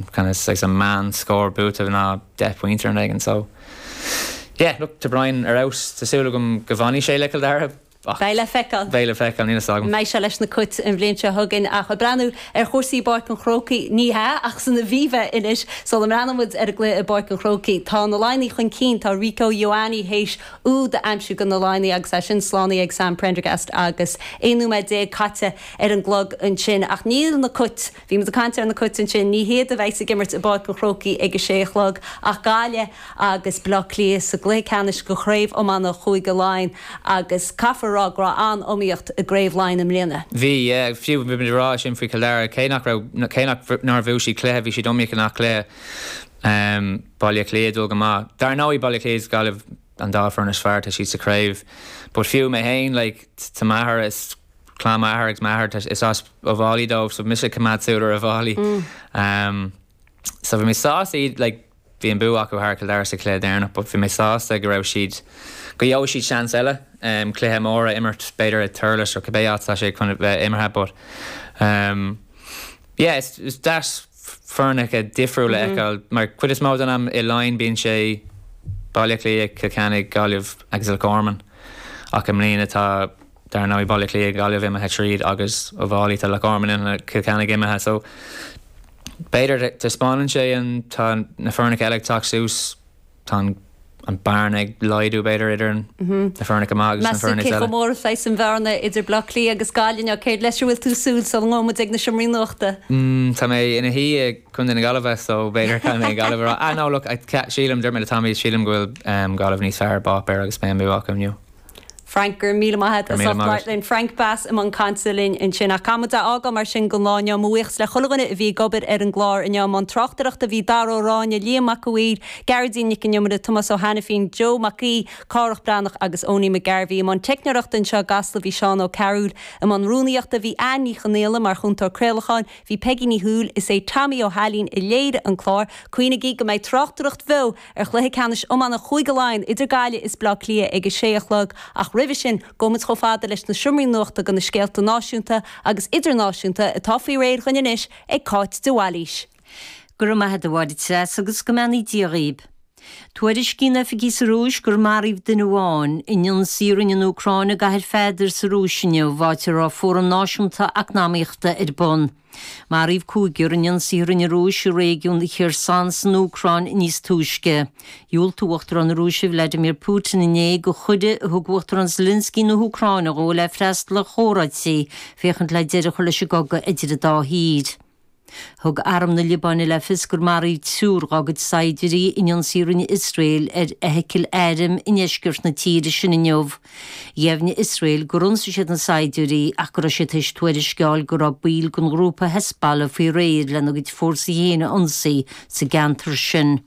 Conas agus an meán scór buaite ná deich bpointe ar an éigean so yeah look tá Brian ar fheabhas tá súil agam go bhfanfaidh sé le Cill Dara ach Beidh le feiceáil. beidh le feiceáil níl a fhios agam an mbeidh sé leis na Cait an bhliain seo chugainn ach ag breathnú ar chúrsaí i bPáirc an Chrócaigh ní hea ach san Aviva anois sula mbreathnóidh muid ar an gcluiche i bPáirc an Chrócaigh tá na Laighnigh chun cinn tá Rico Ioane théis úd a aimsiú do na Laighnigh agus é sin slánaithe ag Sam Prendergast agus 11 nóiméad caite ar an gclog ansin ach níl na Cait Bhí muid ag caint ar na Cait ansin, ní hiad a bheidh's ag imirt i bPáirc an Chrócaigh ag a sé a chlog ach Gaillimh agus Baile Átha Cliath sa gcluiche ceannais de Chraobh Iomána Chúige Laighean agus caithfear a rá go raibh an-iomaíocht i gCraobh Laighean i mbliana. Bhí, yeah. Fiú bhí muid ag rá é sin faoi Chill Dara, cé nach raibh, cé nach, nár bhuaigh siad cluiche, bhí siad iomaíoch i ngach cluiche. Baile Átha Cliath ag dul go maith. Dar ndóigh, Baile Átha Cliath is Gaillimh an dá foireann is fearr atá siad sa chraobh. But fiú mé féin, like, tá m'athair is. clann m'athar agus m'athair tá is as Uíbh Fhailí dóibh so mise ag coimeád súil ar Uíbh Fhailí so bhí mé sásta leo bhí an bua acu thar Cill Dara sa chluiche deireanach, but bhí mé sásta go raibh siad go gheobhaidh siad seans eile cluiche mór a imirt b'fhéidir i Thurles nó cibé áit atá sé chun bheith imeartha but yeah is is deas foirneacha difriúil a fheiceáil mar chuid is mó den am i Laighin bíonn sé Baile Átha Cliath, Cill Chainnigh, Gaillimh agus Loch Garman ach i mbliana tá Dar ndóigh, Baile Átha Cliath, Gaillimh imithe tríd agus Uíbh Fhailí, tá Loch Garman imithe, Cill Chainnigh imithe so b'fhéidir taispeánann sé an tá na foirne eile ag teacht suas, tá an bearna ag laghdú b'fhéidir idir na foirne maithe agus na foirne eile. Meas tú cé chomh mór is a bheidh an bhearna idir Baile Átha Cliath agus Gaillimh inniu, céard leis a bhfuil tú ag súil sula ngabhann muid ag na seomraí nuachta? Tá mé ina shuí i gcontae na Gaillimhe so b'fhéidir caithfidh mé Gaillimh a rá. Ah no look, sílim, dúirt mé le Tommy, sílim go bhfuil Gaillimh níos fearr ar páipéar agus beidh an bua acu inniu. Frank, Go raibh míle maith agat as ucht labhairt linn. Frank Bass i mbun cainte linn ansin. Ach caithfidh muid é a fhágáil mar sin don lá inniu. Mo bhuíochas le chuile dhuine a bhí ag obair ar an gclár inniu. I mbun tráchtaireachta bhí Dara Ó Ráinne, Liam Mac a' Mhaoir, Gearóidín Nic an Iomaire, Tomás Ó hAiniféin, Joe Mac Aoidh, Cárthach Breathnach agus Owenie McGarvey. I mbun teicneoireachta anseo i gCasla bhí Seán Ó Cearúill. I mbun rúnaíochta bhí Anne Ní Chonaola, mar Chúntóir Craolacháin bhí Peigí Ní Thuathail. Is é Tommy Ó hAilín a léirigh an clár. Cuimhnigí go mbeidh tráchtaireacht bheo. ar chluiche ceannais iomána Chúige Laighean idir Gaillimh is Bleá Cliath ag a sé a chlog ach roimhe sin gabhfaidh muid chomh fada leis na seomraí nuachta do na scéalta náisiúnta agus idirnáisiúnta atá faoi réir dhúinn anois ag Cáit de Bhailís. Go raibh maith a't a Mháire Treasa agus go mbeannaí Dia dhaoibh. Tuairiscíonn oifigigh sa Rúis gur maraíodh duine amháin i n-ionsaí a rinne an Úcráin i gCathair Pheadair sa Rúis inniu, áit a raibh fóram náisiúnta eacnamaíochta ar bun. Maraíodh cúigear in ionsaí a rinne an Rúis i réigiún Kherson san Úcráin níos túisce. Dhiúltaigh Uachtarán na Rúise Vladimir Putin inné do chuireadh a thug Uachtarán Zelensky na hÚcráine dhó le freastal ar chomhráití féachaint le deireadh a chur leis an gcogadh idir an dá thír. Thug Arm na Liobáine le fios gur maraíodh triúr dá gcuid saighdiúirí in ionsaí a rinne Iosrael ar fheithicil airm i ndeisceart na tíre sin inniu. Dheimhnigh Iosrael gur ionsaigh siad na saighdiúirí ach go raibh siad tar éis tuairisc a fháil go raibh baill den ghrúpa Hezbollah faoi réir lena gcuid fórsaí féin a ionsaí sa gceantar sin.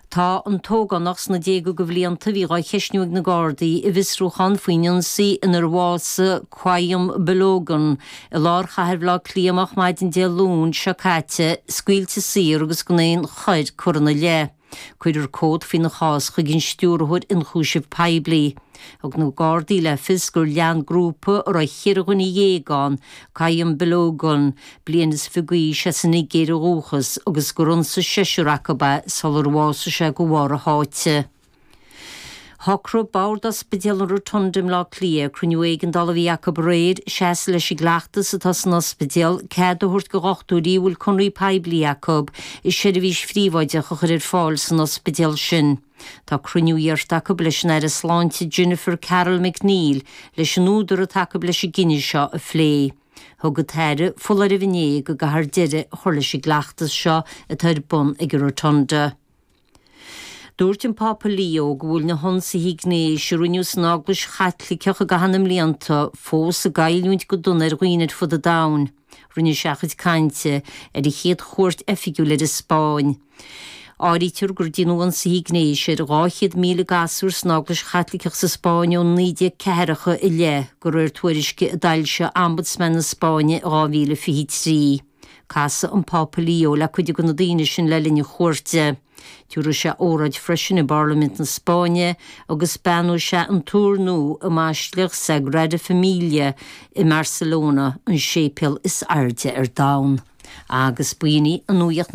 Tá an t-ógánach sna déaga de bhlianta a bhí á cheisniú ag na Gardaí i bhfiosrúchán faoin ionsaí inar bhásaigh Qayyum Balogun i lár chathair Bhaile Átha Cliath moch maidin Dé Luain seo caite scaoilte saor agus gan aon choir curtha ina leith. Cuirfear comhad faoina chás chuig an Stiúrthóir Ionchúiseamh Poiblí. Thug na Gardaí le fios gur lean grúpa a raibh ceithre dhuine dhéag ann, Qayyum Balogun, bliain is fiche d'aois as an Nigéir ó dhúchas, agus gur ionsaigh seisear acu é sular bhásaigh sé de bharr a sháite. Shocraigh Bord Ospidéal an Rotunda i mBleá Cliath, ag cruinniú éigeandála a bhí acu aréir, seasamh leis an gcleachtas atá san ospidéal, cead a thabhairt do dhochtúirí a bhfuil conradh poiblí acu, seirbhís phríobháideach a chur ar fáil san ospidéal sin. Tá cruinniú iarrtha acu leis an Aire Sláinte Jennifer Carroll MacNeill leis an údar atá acu leis an gcinneadh seo a phlé. Thug an tAire foláireamh inné go gcaithfear deireadh a chur leis an gcleachtas seo atá ar bun ag an Rotunda. Dúirt an Pápa Leo go bhfuil na hionsaithe gnéis a rinneadh san Eaglais Chaitliceach i gcaitheamh na mblianta fós ag goilliúint go dona ar dhaoine ar fud an domhain. Rinne sé a chuid cainte ar a chéad chuairt oifigiúil ar an Spáinn. Áirítear gur déanadh ionsaithe gnéis ar 200,000 gasúr san Eaglais Chaitliceach sa Spáinn ó 1940 i leith, de réir tuairisce a d'fhoilsigh Ombudsman na Spáinne in 2023. Casfaidh an Pápa Leo le cuid de na daoine sin le linn a chuairte. Tabharfaidh sé óráid freisin i bParlaimint na Spáinne agus beannóidh sé an túr nua i mBaisleac Sagrada Familia i mBarcelona, an séipéal is airde ar domhan. Agus b'in í an nuaíocht.